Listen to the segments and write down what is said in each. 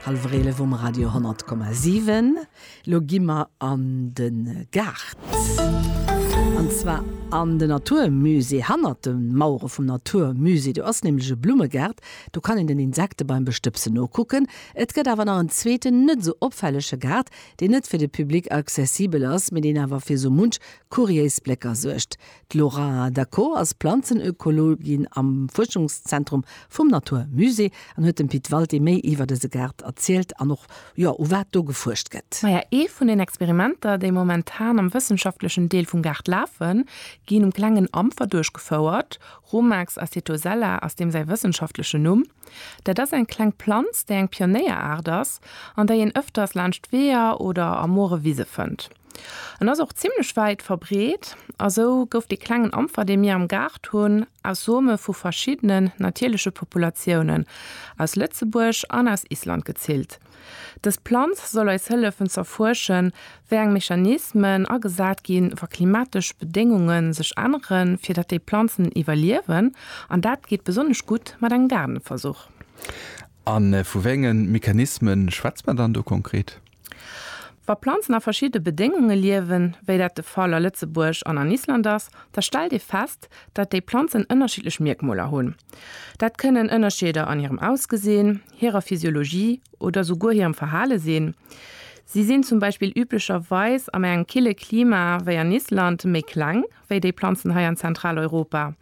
Hallwer 11 um Radio 10,7. Lo gi mer an de Gaart. An zwar an de Naturmusée. Hannert de Mauere vum Naturmusée, do ass nämlech e Blummegart. Do kann een den Insekte beim Bestëbsen nokucken. Et gëtt awer nach en zweeten, net esou opfällege Gaart, deen net fir de Public accessibel ass, mee deen awer fir esou munch kuriéis Blécker suergt. D'Laura Daco ass Planzenökologin am Fuerschungszentrum vum Natur Musée an huet dem Pit Walté méi iwwer dëse Gaart erzielt an och, jo, u wat do gefuerscht gëtt. Maja, ee vun den Experimenter, déi momentan am wëssenschaftlechen Deel vum Gaart lafen, ginn um klengen Ampfer duerchgefouert. Rumax acetosella ass deem säi wëssenschaftlechen Numm. Dat ass eng kleng Planz, déi eng Pionéieraart ass an déi een ëfters laanscht Weeër oder a moere Wise fënnt. En ass och zimmlech wäit verbreet a sou gouf dee klengen Ampfer, dee mir am Gaart hunn, aus Some vu verschiddenen natierleche Populatiounen aus Lëtzebuerg an aus Island gezillt. Dës Planz soll eis hëllefen z'erfuerschen, wéi eng Mechanismen agesat ginn, wa klimatesch Bedéngunge sech änneren, fir datt déi Planzen iwwerliewen. An dat geet besonnesch gutt mat engem Gaardenversuch. A vu wéi enge Mechanisme schwätze mer dann do konkret? Wa Planzen a verschiddene Bedéngunge liewen, wéi dat de Fall a Lëtzebuerg an an Island ass, da stellt ee fest, datt déi Planzen ënnerschiddlech Mierkmoler hunn. Dat kënnen Ënnerscheeder an hirem Ausgesinn, hirer Physiologie oder souguer hirem Verhale sinn. Si sinn zum Beispill üblecherweis an engem kille Klima wéi an Island méi kleng wéi déi Planzen hei an Zentraleuropa.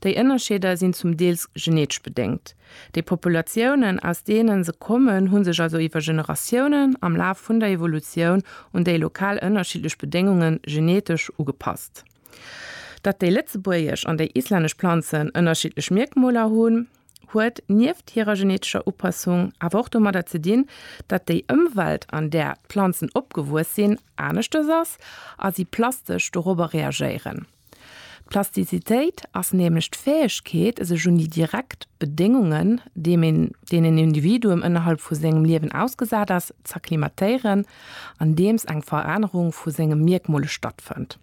Déi Ënnerscheeder sinn zum Deels genetesch bedéngt. Déi Populatiounen, aus deene se kommen, hu sech also iwwer Generatiounen am Laf vun der Evolutioun un déi lokal ënnerschiddlech Bedéngunge genetesch ugepasst. Datt déi lëtzebuergesch an déi islännesch Planzen ënnerschiddlech Mierkmoler hunn, huet nieft hirer genetescher Upassung awer och domadder ze dinn, datt déi Ëmwelt, an där d'Planzen opgewuess sinn, aneschters ass a si plastesch dorobber reagéieren. D'Plastizitéit ass nämlech d'Fäegkeet, sech un déi direkt Bedéngungen, deenen een Individuum ënnerhalb vu sengem Liewen ausgesat ass, z'acclimatéieren, andeems eng Verännerung vu senge Mierkmole stattfënnt.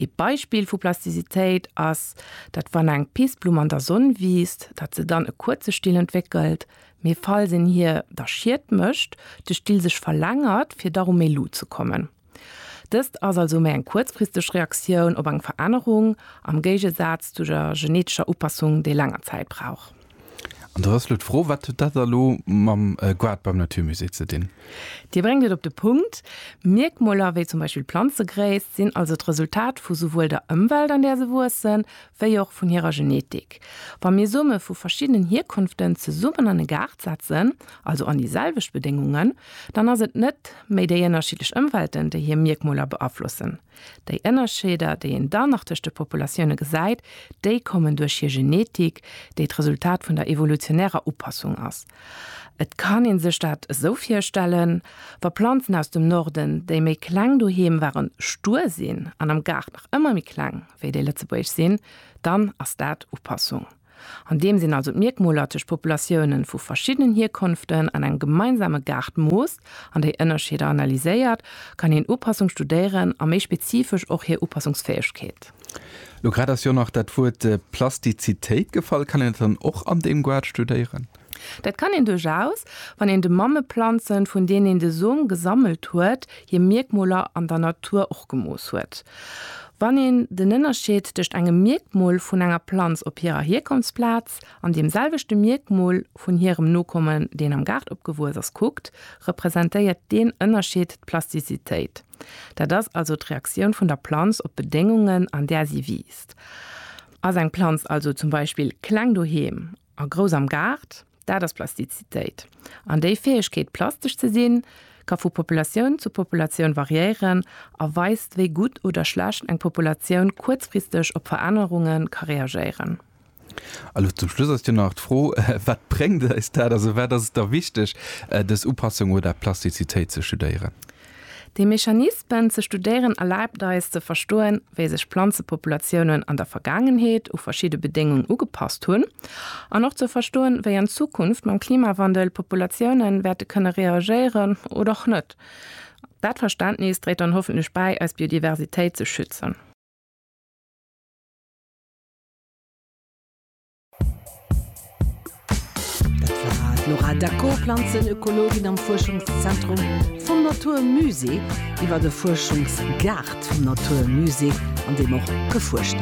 Ee Beispill vu Plasticitéit ass, datt wann eng Pissblumm an der Sonn wiisst, datt se dann e kuerze Still entwéckelt, mee falls een hir da Schied mécht, de Still sech verlängert, fir da ru méi Luut ze kommen. Dëst ass also méi eng kuerzfristeg Reaktioun op eng Verännerung, am Géigesaz zu der genetescher Upassung, déi länger Zäit brauch. An da ass elo d'Fro, Wat huet dat elo mam Goart beim Naturmusée ze dinn? Dir bréngt et op de Punkt. Mierkmoler wéi zum Beispill d'Planzegréisst sinn also d'Resultat vu souwuel der Ëmwelt, an där se wuessen, wéi och vun hirer Genetik. Wa mir Some vu verschiddenen Hierkonften zesummen an e Gaart setzen, also an déi selwecht Bedéngungen, dann ass et net méi déi ënnerschiddlech Ëmwelten, déi hir Mierkmoler beaflossen, Déi Ënnerscheeder, déi een dann nach tëscht de Populatioune gesäit, déi kommen duerch hir Genetik, déi d'Resultat vun der evolutionärer Upassung ass. Et kann ee sech dat esou virstellen, Wa Planzen aus dem Norden, déi méi kleng doheem waren, stuer sinn an am Gaart nach ëmmer méi kleng wéi déi lëtzebuergesch sinn, dann ass dat Upassung. An deem sinn also d'Mierkmoler tëscht Populatiounen vu verschiddenen Hierkonften an engem gemeinsame Gaart moost an déi Ënnerscheeder analyséiert, kann een Upassung studéieren a méi spezifesch och hir Upassungsfäegkeet. Lo grad ass jo nach dat Wuert Plastizitéit gefall. Kann een dat dann och an deem Guard studéieren? Dat kann een duerchaus, wann een de Mammeplanzen, vun deenen een de Som gesammelt huet, hir Mierkmoler an der Natur och gemooss huet. Wann een den Ënnerscheed tëscht engem Mierkmol vun enger Planz op hirer Hierkonftsplaz an deem selwechte Mierkmol vun hirem Nokommen, deen am Gaart opgewuess ass, kuckt, representéiert deen Ënnerscheed d'Plastizitéit. Dat ass also d'Reaktioun vun der Planz op d'Bedéngungen, an där si wiisst. Ass eng Planz also zum Beispill kleng doheem A grouss am Gaart, dat ass Plastizitéit. An déi Fäegkeet, plastesch ze sinn, ka vu Populatioun zu Populatioun variéieren a weist, wéi gutt oder schlecht eng Populatioun kuerzfristeg op Verännerunge ka reagéieren. A lo zum Schluss ass jo nach d'Fro, Wat bréngt eis dat? Also wat ass et da wichteg, dës Upassung oder Plastizitéit ze studéieren? Déi Mechanismen ze studéieren erlaabt eis ze verstoen, wéi sech Planzepopulatiounen an der Vergaangenheet u verschidde Bedéngung ugepasst hunn an och ze verstoen, wéi an Zukunft mam Klimawandel Populatioune wäerte kënne reagéieren oder och net. Dat Verständnis dréit dann hoffentlech bäi, eis Biodiversitéit ze schützen. Dat war d'Laura Daco, Planzenökologin am Fuerschungszentrum vum Natur Musée, iwwer de Fuerschungsgaart vum Natur Musée, an deem och gefuerscht